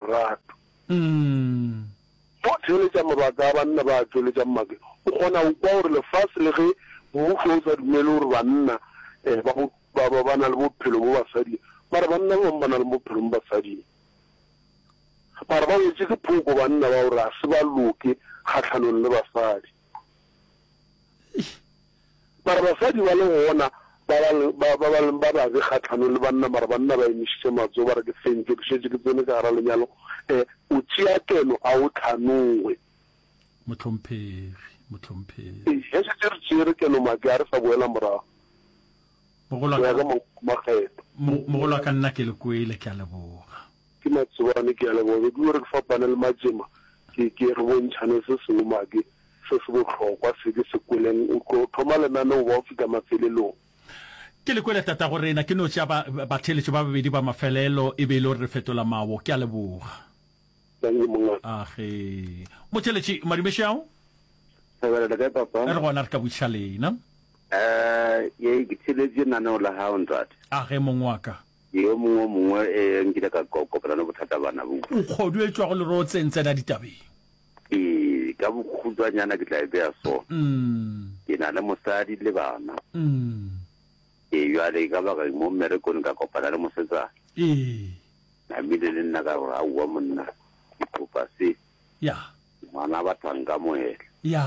lerato. Go theeletša mabaka a banna ba a tšweletšang make, o kgona go kwa gore lefase le ge mmušo o sa dumele gore banna ba ba na le bophelo mo basading, mara banna ba bangwe ba na le bophelo mo basading. Mara ba wetše ke phoko banna ba gore ga se ba loke kgahlanong le basadi. Mara basadi ba le gona ba ba leng ba ba leng ba babe kgahlanong le banna, mara banna ba emišitše matsogo, ba re, Ke fentšwe, ke šetše ke tsene ka gare ga lenyalo. E, o tšea keno, a o tlhanoe. Mohlomphegi, mohlomphegi. E, ge šetše re tšere keno, ma, ke a re sa boela morago, go ya ka makgetlo. Mogolwa ka nna ke le kwele, ke a leboga. Ke Matsobane ke ya leboga be ke yo re ke fapane le Majema ke ke re bontšhane se sengwe madi se se bohlokwa se ke se kweleng o tlo thoma lenaneo ba o fita mafelelong. Ke le kwele tatago rena ke no tšea ba batheeletšo ba babedi ba mafelelo e be e le gore re fetola mawo ke ya leboga. Dankie mongaka. A ge motheeletši madumešo ya go. Thobela le kae papa. Re gona re ka botšiša lena. Eh ye ke theeletše naneo la hao ntate. A ge mong wa ka. Yo mongwe o mongwe e nkile ka ko, kopana le bothata bana bo. Nkgodu e tšwago lerotseng tsena ditabeng. E, ka bokhutswanyana ke tla e beya so. Ke na le mosadi le bana. E, jwale ka baka mo mmerekong ka kopana le mosetsana. E, Namile le nna ka gore aowa monna ke kopa se. Ya. Ngwana ba tla nkamohela. Ya.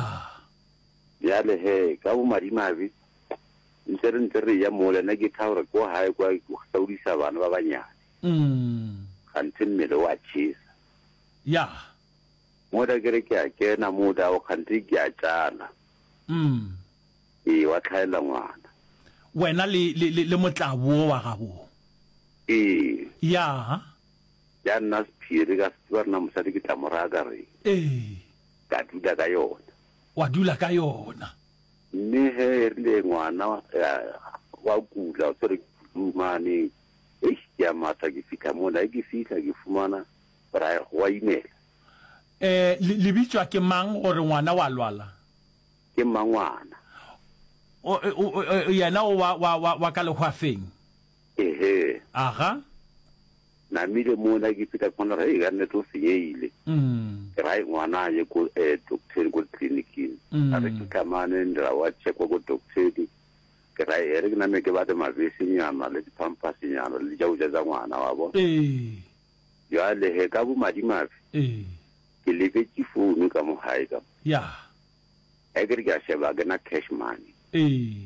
Bjale he, ka bomadimabe, ntse re ntse re eya mola, nna ke tha gore ko gae kwa ke hlaudisa bana ba banyane, kganthe mmele o a tšhesa. Ya. Mola ke re ke a kena moo dago, kganthe ke a tšala. Ee, wa tlhaela ngwana. Wena le, le, le, le motlabu wo wa gabo. Ee. Ya. Ya nna sephiri, ka se tseba rena mosadi ke tla mo raya ka reng. Ee. Ka dula ka yona. Wa dula ka yona. Mme ge e rile ngwana wa kula, o tshwerwe ke flu mane, eish, ke a matha ke fihla mona. Ge ke fihla ke fumana gore a go a imela. Um, le bitšwa ke mang gore ngwana wa lwala? Ke mmangwana. O, o, o, yena o wa, wa, wa, wa ka lehwafeng? Ehee. Aga. Namile mona ke feta kwana re ga nne to senyehile. Ke ra ngwana ye ko eh doctor ko clinicing. A re ke tlamane ndra wa check wa ko doctor di. Ke ra ere ke name ke ba de mabese nyama le di pampers nyana le ja uja za ngwana wa bo. Eh. Ya le he ka bo madimabe. Eh. Ke le be ke phone ka mo hae ka. Ya. Ekere ke a sheba ke na cash money. Eh.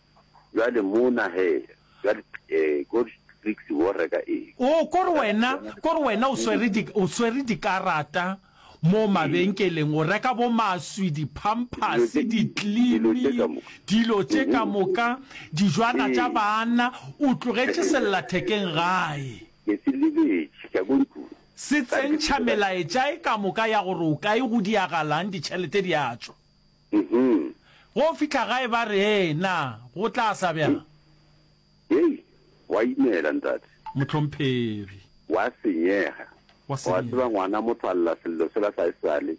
Bjale mona he, bjale, ee, ko Clicks wo reka eng? Oo, ko re wena, ko re wena o swere di, o swere dikarata moo mabenkeleng, o reka bo maswi, di-pampers, ditlimi, dilo tše ka moka, dijwana tša baanna, o tlogetše sellathekeng gae. Ke se lebetše, ka ko ntlong. Se tsentšha melaetša e ka moka ya gore o kae, go diagalang, ditšhelete di a tšwa. Uhmm. Go fihla gae ba re, Hee, na go tla sa bjang? Hei, gwa imela, ntate. Mohlomphegi. Gwa senyega. Gwa senyega. Wa tseba, ngwana motho a lla sello sela sa esale,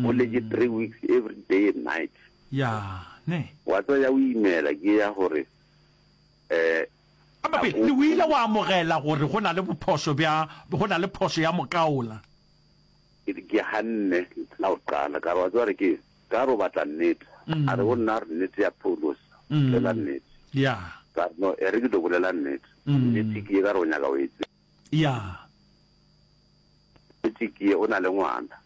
o letše three weeks every day and night. Ya, ne. Wa tseba ya go imela ke ya gore, eh, Gape, le o ile wa amogela gore go na le bophošo bja, go na le phošo ya mokaola. Ke re, Ke ganne la go qala. Ka re, Wa tseba re ke eng? Ka re, O batla nnete. A re, Go nna re nnete ya Paulos. Bolela nnete. Ya. Ka re, No, e re ke tlo bolela nnete. Nnete ke ye, ka re, O nyaka go e tseba. Ya. Nnete ke ye, o na le ngwana.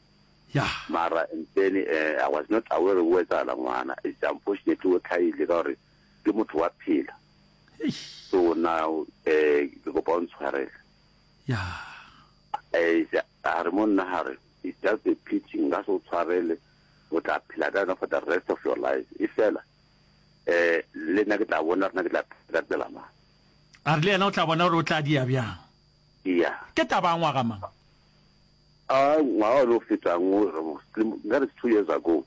Ya. Mara and then eh, I was not aware go etsagala ngwana. It's unfortunately o tlhagile ka gore ke motho wa phela. Eish. So now eh, ke kopa o ntshwarele. ya eja a re mo nna gare it's just a pity nka se o tshwarele o tla phela ka yona for the rest of your life e fela eh le nna ke tla bona rena ke tla phela ka tsela mang a re le yena o tla bona gore o tla dia bjang ya ke taba ya ngwaga mang a ngwaga o ne o fetang o re mo- nka re two years ago